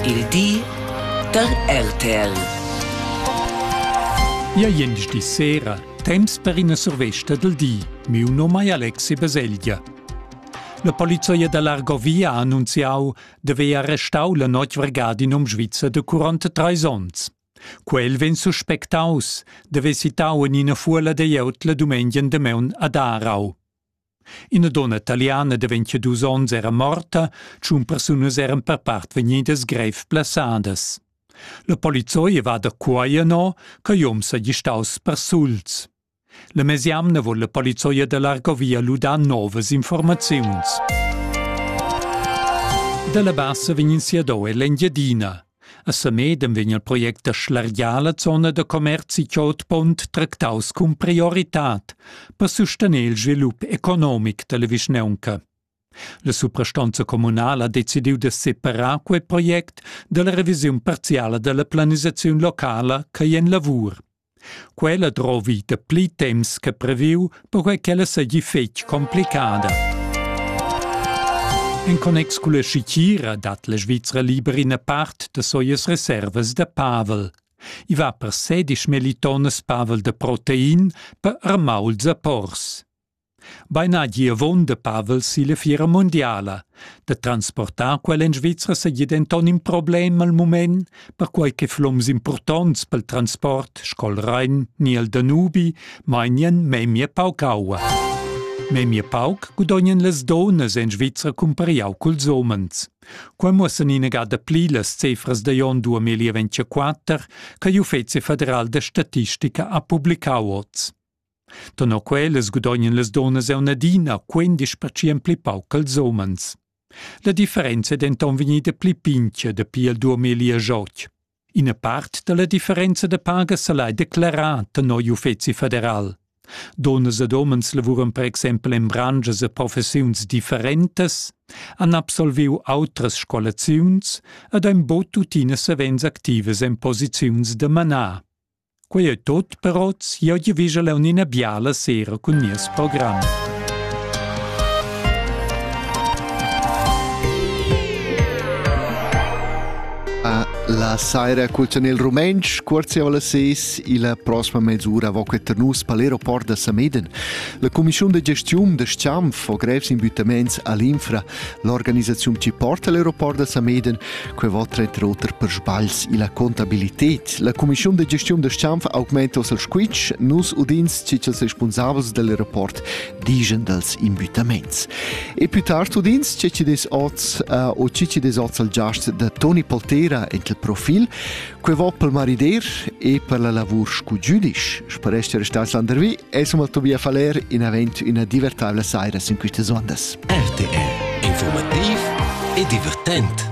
Il di da RTL. Ia gliendisdi sera, temps per ina survesta del di. Miu nome è Alexi Baselgia. La polizia da l'Argovia ha annunziau de vea restau la notg vergadin um Schweizer de 43 onns. Quel vegn suspectaus de vesitau en ina fuola de jeut la dumengen de meun ad Arau. Ina donna italiana de 22 onns era morta, tschun persunas eran per part vegnidas grev blessadas. La polizei va da quai no, che jom seigi staus persuls. La mesiamna vol la polizei da l'Argovia ludar novas informaziuns. Dalla bassa vegnin sia do e l'Engiadina. A Samedem vegn il project da schlargiar la zona da commerzi Chotpont tractaus cun prioritad per sustener il svilup economic dalla vischnaunca. La suprastanza communala ha decidiu da separar quei project dalla revisiun parziala dalla planisaziun locala ch'ei en lavur. Quella drovi da pli temps che previu, perquai ch'ella seigi fetg complicada. En connex culla schitgira dat la Svizra liber ina part da soias reservas da pavel. I va per sedisch melitonas pavel de protein per armauls a pors. Beina giavon da Pavel silla fiera mundiala. Da transportar quel en Svizra seigi denton in problem al mument, perquai che floms impurtonts pel transport sco Rhein ni el Danubi mainien memia pauc aua. Memia pauc gudognan las donas en Svizra cumpariau culs homens. Qua muossan inagada pli las cifras da jon 2024 che l'Uffizi federal da statistica ha publicau oz. Tenor quellas gudognan las dunnas auna adina quindisch percent pli pauc ch'ils umens. La differenza è denton vegnida pli pintga dapi il 2008. Ina part dalla differenza de paga se l'ha declarà tenor l'Uffeci federal. Dunnas ed umens lavuran per exempel en brangias e professiuns differentas, han absolviu outras scolaziuns ed ein bod tuttina savens activas en posiziuns de manar. Quei ei tut per oz. Jeu giavischel aunc ina biala sera cun nies program. A la saira cul chanel rumentsch cuorziava la ses illa prossma mezz'ura vo queter nus pel aeroport da Sameden. La cumischiun de gestiun da Schanf ho grevs imbüttaments all'infra L'organisaziun chi porta l'aeroport da Sameden, que vo tra oter per sbagls illa contabilität. La cumischiun de gestiun da Stampf augmenta il squitsch, nus udins chi cha'ls responsabels del aeroport digen dals invitaments. E più tard udins che ci des oz uh, o ci ci des oz al giast da Toni Poltera ent il profil, Quei va pel marider e per la lavur scu giudisch, sparesce restas landervi e som al Tobias Faller in avent üna divertavla saira sin quistas ondas. RTR Informativ e divertent